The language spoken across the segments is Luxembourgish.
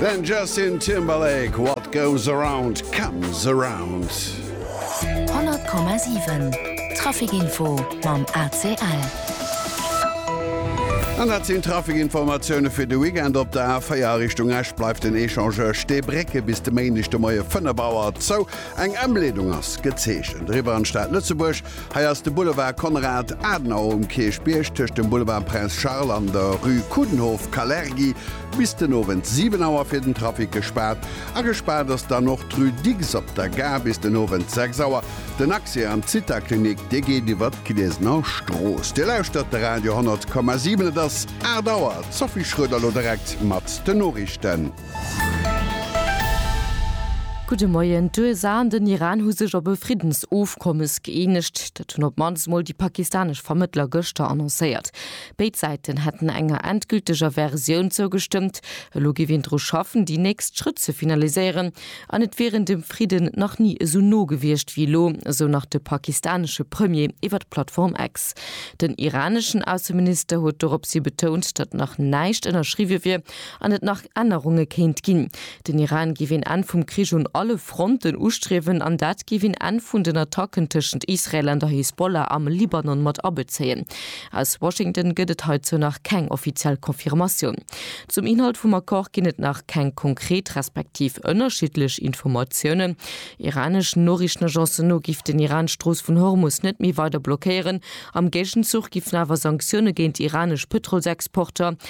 Den Justin Timberlake, What goes around comes around. 100,7 Trafikinfo mam ACL. An dat sinn d'Trafikinformatioune fir de Weekend. Op der A4 a Richtung Esch bleift den Echangeur Steebrécke bis de Méindeg de Moie 5 Auer zou. Eng Ëmleedung ass gezeechent. Eriwwer an d'Stad Lëtzebuerg Hei ass de Boulevard Konrad Adenauer um Kierchbierg tëscht dem Boulevard Prince Charles an der Rue Coudenhove, Kalergi, bis den Owend 7 Auer fir den Trafic gespaart. A gespaart ass dann och d'Rue Dicks op der Gare bis den Owend 6 Auer. Den Accès an d'Zithaklinik, dee geet iwwer d'Gliesener Strooss. Dir lauschtert de Radio 100,7. Et ass 8 Auer. D'Sophie Schroeder elo direkt mat den Noriichten. Gudde Moien. D'USA an den Iran hu sech op e Friddensofkommes gëeenegt. Dat hunn op d'mannst mol déi pakistanesch Vermëttler gëschter annoncéiert. Béid Säiten hätten enger endgülteger Versioun zougestëmmt. Elo géif een dru schaffen, déi nächst Schrëtt ze finaliséieren. An et wieren dem Fridden nach ni esou no gewiescht wéi elo, esou nach de pakistanesche Premier iwwer d'Plattform X. Den iraneschen Ausseminister huet doropshi betount, datt nach näischt ënnerschriwwe wier, an et nach Ännerunge kéint ginn. Den Iran géif een Enn vum Krich un alle Fronten ustriewen an dat géif een Enn vun den Attacken tëschent Israel an der Hisbollah am Libanon mat abezéien. Aus Washington gëtt et heizou nach keng offiziell Confirmatioun. Zum Inhalt vum Accord ginn et nach keng konkret respektiv ënnerschiddlech Informatiounen. Iraneschen Noriichtenagencen no géif den Iran d'Strooss vun Hormus net méi weider blockéieren. Am Géigenzuch géifen awer Sanktioune géint iranesch Pëtrolsexporter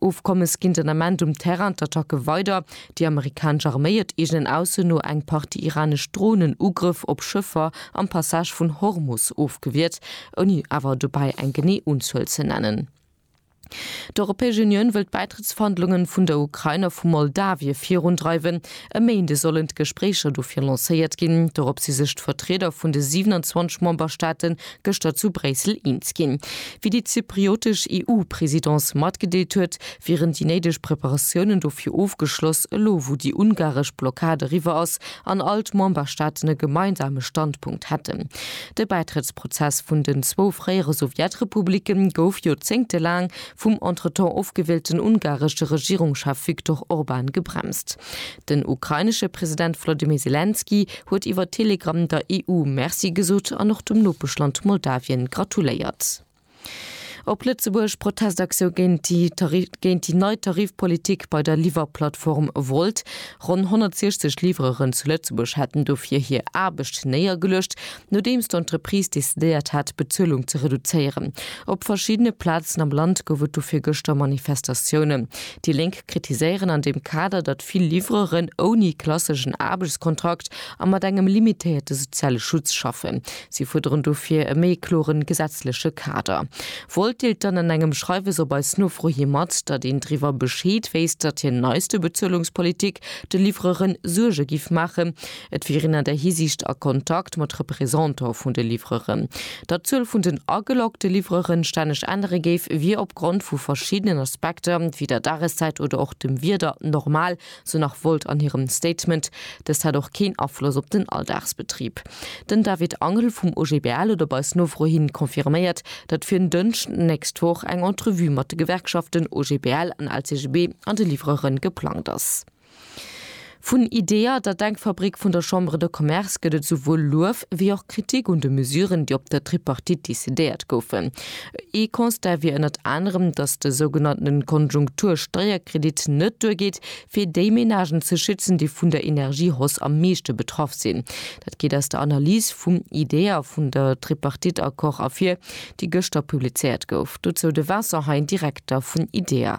Ofkommes ginn den Ament um Terrain d'Attacke weider. Déi amerikanesch Arméi et eegenen Aussen no eng Partie iranesch Dronen Ugrëff op Schëffer am Passage vun Hormus ofgewiert, ouni awer dobäi eng genee Unzuel ze nennen. D'Europäesch Unioun wëll d'Bäitrëttsverhandlungen vun der Ukrain a vu Moldawie virundreiwen. E Méinde sollen d'Gespréicher dofir lancéiert ginn. Dorop si sech d'Vertrieder vun de 27 Memberstaate gëschter zu Bréissel eens ginn. Wéi déi zypriotesch EU-Presidence matgedeelt huet, wieren déi néideg Preparatiounen dofir ofgeschloss, elo wou déi ungaresch Blockad eriwwer ass an all d'Memberstaaten e gemeinsame Standpunkt hätten. De Bäitrëttsprozess vun den zwou fréiere Sowjetrepublike gouf joerzéngtelaang vum entretemps ofgewielten ungaresche Regierungschef Viktor Orban gebremst. Den ukrainesche President Wolodymyr Selenskyj huet iwwer Telegram der EU Merci gesot an och dem Nopeschland Moldawien gratuléiert. Op Lëtzebuerg, Protestaktioun géint déi nei Tarifpolitik bei der Liwwerplattform Wolt. Ronn 160 Liwwereren zu Lëtzebuerg hätten dofir hir Aarbecht néiergeluecht, nodeems d'Entreprise decidéiert hat, d'Bezuelung ze reduzéieren. Op verschiddene Plazen am Land gouf et dofir gëschter Manifestatiounen. Déi Lénk. kritiséieren an deem Kader, datt vill Livreuren ouni klasseschen Aarbechtskontrakt a mat engem limitéierte soziale Schutz schaffen. Si fuerderen dofir e méi kloren gesetzleche Kader. Volt deelt dann an engem Schreiwes op eis Nofro hi mat, datt een driwwer Bescheed wéisst, datt hir neiste Bezuelungspolitik de Livreuren Suerge giff maachen, Et wieren an där Hisiicht a Kontakt mat Representant vun de Livreuren. Datt d'Zuel vun den ageloggte Livreuren stänneg ännere géif, wier opgrond vu verschiddenen Aspekter, wéi der Dageszäit oder och dem Wieder, normal, sou nach Wolt an hirem Statement. Dëst hätt och keen Afloss op den Alldagsbetrib. Den David Angel vum OGBL huet op eis Nofro hin confirméiert, datt fir en Dënschden d'nächst Woch eng Entrevue mat de Gewerkschaften OGBL an LCGB an de Livreuren geplangt ass. Vun IDEA, der Denkfabrik vun der Chambre de Commerce, gëtt et esouwuel Luef wéi och Kritik un de Mesuren, déi op der Tripartite decidéiert goufen. Ee Constat wier ënnert anerem, datt de sougenannte Konjunktur-Steierkredit net duergeet, fir déi Menagen ze schützen, déi vun der Energiehausse am meeschte betraff sinn. Dat geet aus der Analys vum IDEA vun der Tripartite-Accord ervir, déi gëschter publizéiert gouf. Dozou de Vincent Hein, Direkter vun IDEA.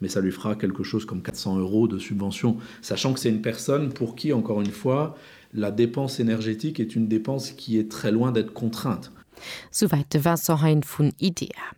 mais ça lui fera quelque chose comme 400 euros de subvention, sachant que c'est une personne pour qui, encore une fois, la dépense énergétique est une dépense qui est très loin d'être contrainte. Souwäit de Vincent Hein vun IDEA.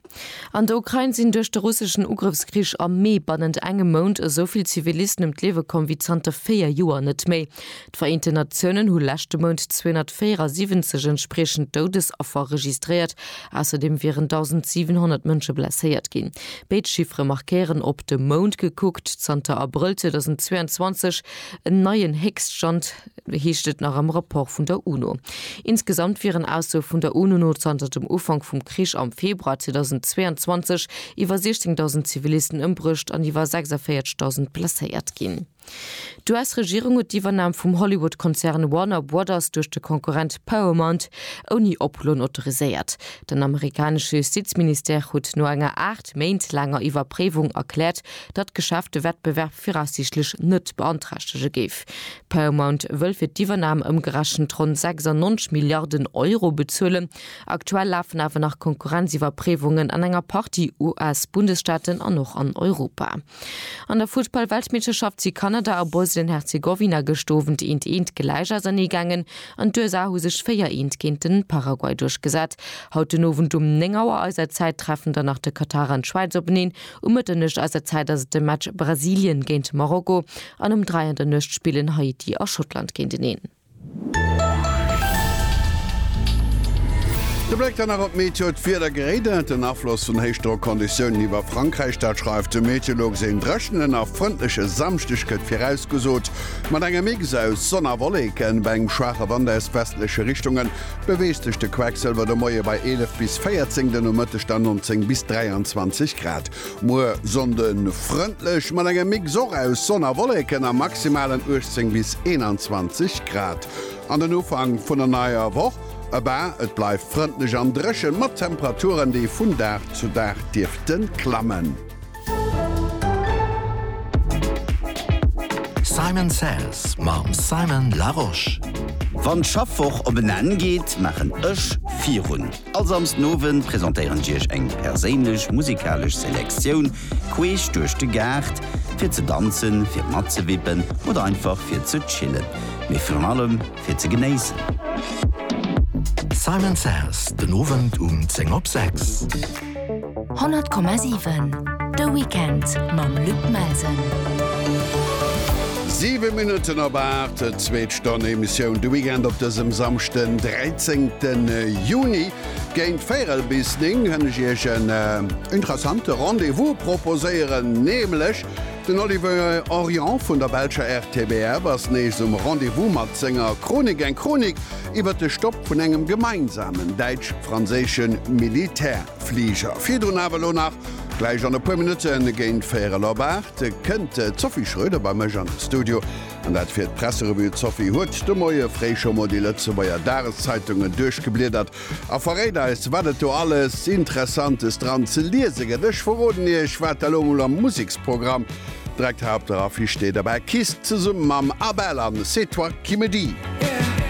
An der Ukrain sinn duerch de russeschen Ugrëffskrich am Mee bannent engem Mount esou vill Zivilisten ëm d'Liewe komm wéi zanter véier Joer net méi. D'Vereenten Natiounen hu leschte Mount 274 entspriechend Doudesaffer registréiert, ausserdeem wieren 1.700 Mënsche blesséiert ginn. Béid Chiffere markéieren, op de Mount gekuckt, zanter Abrëll 2022 en neien Héchststand, heescht et nach am Rapport vun der UNO. Insgesamt wieren Aussoe vun der UNO no zanter dem Ufank vum Krich am Februar 2022 iwwer 16.000 Zivilisten ëmbruecht an iwwer 46.000 blesséiert ginn. D'US-Regierung huet d'Iwwernam vum Hollywood-Konzern Warner Brothers duerch de Konkurrent Paramount ouni Oploen autoriséiert. Den amerikanesche Justizministère huet no enger aacht Méint laanger Iwwerpréiwung erkläert, datt d'Geschäft de Wettbewerb viraussiichtlech net beanträchtege géif. Paramount wëll fir d'Iwwernam ëmgerechent ronn 96 Milliarden Euro bezuelen. Aktuell lafen awer nach Konkurrenziwwerpréiwungen an enger Partie US-Bundesstaaten an och an Europa. An der Fussball-Weltmeeschterschaft si Kanada a Bosnien-Herzegowina gëscht Owend eent eent gläich auserneegaangen an d'USA hu sech 4 eent géint den Paraguay duerchgesat. Haut den Owend um 9 Auer eiser Zäit treffen dann nach de Katar an d'Schwäiz openeen. Um Mëtternuecht eiser Zäit ass et de Match Brasilien géint Marokko an um 3 an der Nuecht spillen Haiti a Schottland géinteneen. De Bléck dann nach op d'Meteo, D'Wieder geréidert den Afloss vun Héichdrockonditiounen iwwer Frankräich, dat schreift de Meteolog. Een dréchenen a frëndleche Samschdeg gëtt virausgesot, mat engem Mix aus Sonn a Wolleken. Bei engem schwaache Wand aus westleche Richtunge beweegt sech de Quecksëlwer de Moie bei 11 bis 14, den Nomëtteg dann 19 bis 23 Grad. Muer Sonnde frëndlech mat engem Mix och aus Sonn a Wolleken a maximalen 18 bis 21 Grad. An den Ufank vun der neier Woch, ëbaa, et bleift frëndlech an dréchen, mat Temperaturen, déi vun Dag zu Dag dierfte klammen. Simon Says mam Simon Larosche. Wann d'Schaffwoch op en Enn geet, maachen ech virun. All Samsden Owend presentéieren ech iech eng perséinlech musikalesch Selektioun queesch duerch de Gaart, fir ze danzen, fir matzewippen oder einfach fir ze chillen, mee virun allem fir ze genéissen. Simon Says, den Owend um 10 op 6. 100,7 De Weekend mam Luc Melsen. 7 Minutten op 8 zweet Stonn Emissioun de Weekend op dësem samchten 13. Juni géint Véierel bis Ning hënne Iech en äh, interessante Rendevous proposéieren, neemlech den Oliver Orient vun der Belscher RTBF ass nees um Rendevous mat senger Chronik, eng Chronik iwwer de Stopp vun engem gemeinsamen däitsch-franséische Militär. Fliger. Virdrun awer elo nach, gläich an e puer Minutten, géint véierel op aacht, kënnt d'Sophie Schroeder bei mech an de Studio. An dat fir d'Presserevue. D'Sophie huet de Moie fréi scho mol déi Lëtzebuerger Dageszeitungen duerchgebliedert a verréit eis, wat et do alles Interessantes dran ze liese gëtt. Ech verroden Iech, wat da lo mol am Museksprogramm direkt hei op der Affiche steet, Abba Kiss zesumme mam Abel an C'est toi qui me dis.